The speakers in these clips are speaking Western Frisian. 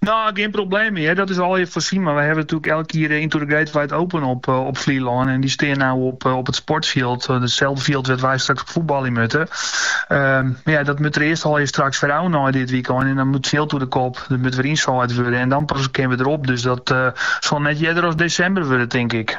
Nou, gjin probleem mear. Dat is allegear foarsjoen. Mar wy hawwe natuerlik elk jier de Into the Great Wide Open op, eh, op Flylân. En dy stean no op, eh, op it sportfjild. eh, Itselde fjild wêr't wy straks op fuotbalje moatte. Ehm, mar ja, dat moat der earst allegear straks wer ôf nei dit wykein. En dan moat it fjild oer de kop. Der moat wer ynsaaid wurde. En dan pas kinne we derop. Dus dat, eh, sil net earder as desimber wurde, tink ik.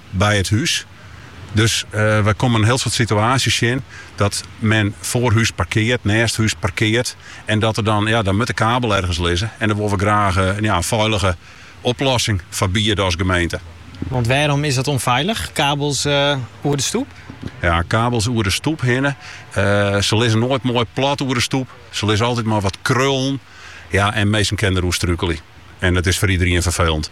by it hûs. Dus wy komme in hiel soad situaasjes tsjin dat men foar hûs parkeart, neast hûs parkeart. En dat der dan, ja, dan moat de kabel ergens lizze. En dêr wolle we graach ja, in feilige oplossing foar biede as gemeente. Want wêrom is dat onfeilich, kabels eh, oer de stoep? Ja, kabels oer de stoep hinne. Eh, se lizze noait moai plat oer de stoep. Se lizze altyd mar wat krullen. Ja, en minsken kinne der oer strúkelje. En dat is foar iderien ferfelend.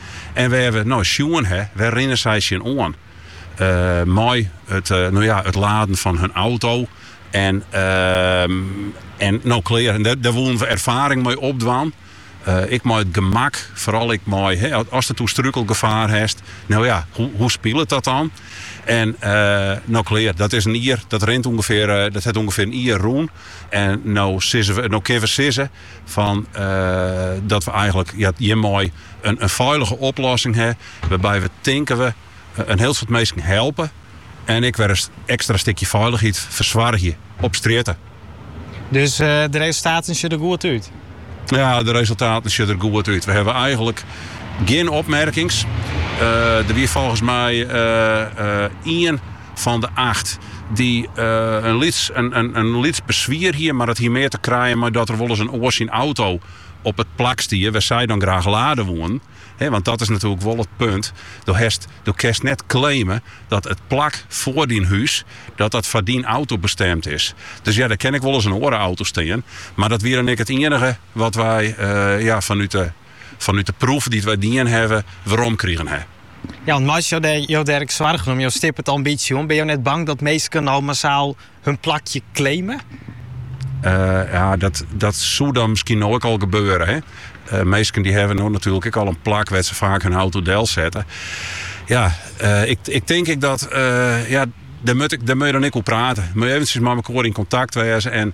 En we hawwe no sjoen, hè, wêr rinne sy tsjin oan? Mei it, no ja, it laden fan hun auto. En, en no klear. En dêr woenen we erfaring mei opdwaan. Ek mei it gemak, foaral ek mei, asto strúkelgefaar hast, no ja, hoe, hoe spilet dat dan? En, no klear. Dat is in jier, dat rint ûngefear, dat hat ûngefear in jier rûn. En no sizze we, no kinne we sizze, Fan dat we eigenlik hjirmei in feilige oplossing ha wêrby't we tinke we in hiel soad minsken helpe en ek wer in ekstra stikje feilichheid fersoargje op strjitte. Dus de resultaten sjogge der goed út? Ja, de resultaten sjogge der goed út. We hawwe eigenlik gjin opmerkings. Der wie folgens my ien. fan de acht, dy't in lyts beswier hie, mar dat hie mear te krijen mei dat der wolris in oar syn auto op it plak stie wêr't sy dan graach lade woenen. Want dat is natuerlik wol it punt, do kinst net claime dat it plak foar dyn hûs dat dat foar dyn auto bestemd is. Dus ja, der kin ek wolris in oare auto stean, mar dat wie dan ek it ienige wat wy fanút de. fanút de proef dy't wy dien hawwe, werom krigen ha. Ja, want meitsje jo dêr, jo dêr ek soargen om, jo stippe it al in bytsje oan. Binne jo net bang dat minsken no massaal hun plakje claime? Eh, ja, dat, dat soe dan miskien no ek al gebeure. Hè? Uh, minsken dy hawwe no natuerlik ek al in plak wêr't se faak hun auto delsette. Ja, eh, ik, ik tink ik dat... ja, dêr moat, ik, dêr moatte je dan ek oer prate. Moatte je eventsjes mei elkoar yn kontakt wêze en...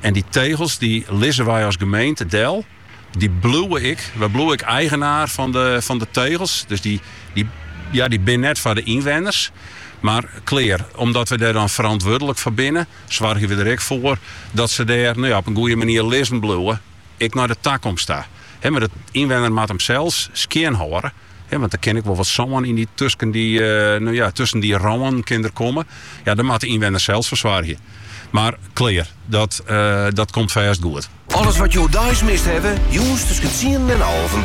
En dy tegels dy lizze wy as gemeente del. Dy bliuwe ek. Wy bliuwe ek eigenaar fan de tegels. Dus dy ja, dy binne net foar de ynwenners. Mar klear, omdat we dêr dan ferantwurdlik foar binne, soargje we der ek foar dat se dêr no ja, op in goede manier lizzen bliuwe, ek nei de takomst ta. Mar de ynwenner moat him sels skjinhâlde. Ja, want dat kin ek wel wat sân yn de tusken dy, nou ja, tusken dy rouwen kin er komme. Ja, dan moatte de ynwenners sels fersoargje. Mar klear, dat, dat komt fêst goed. Alles wat jo deis mist hawwe, jûns tusken tsienen en alven.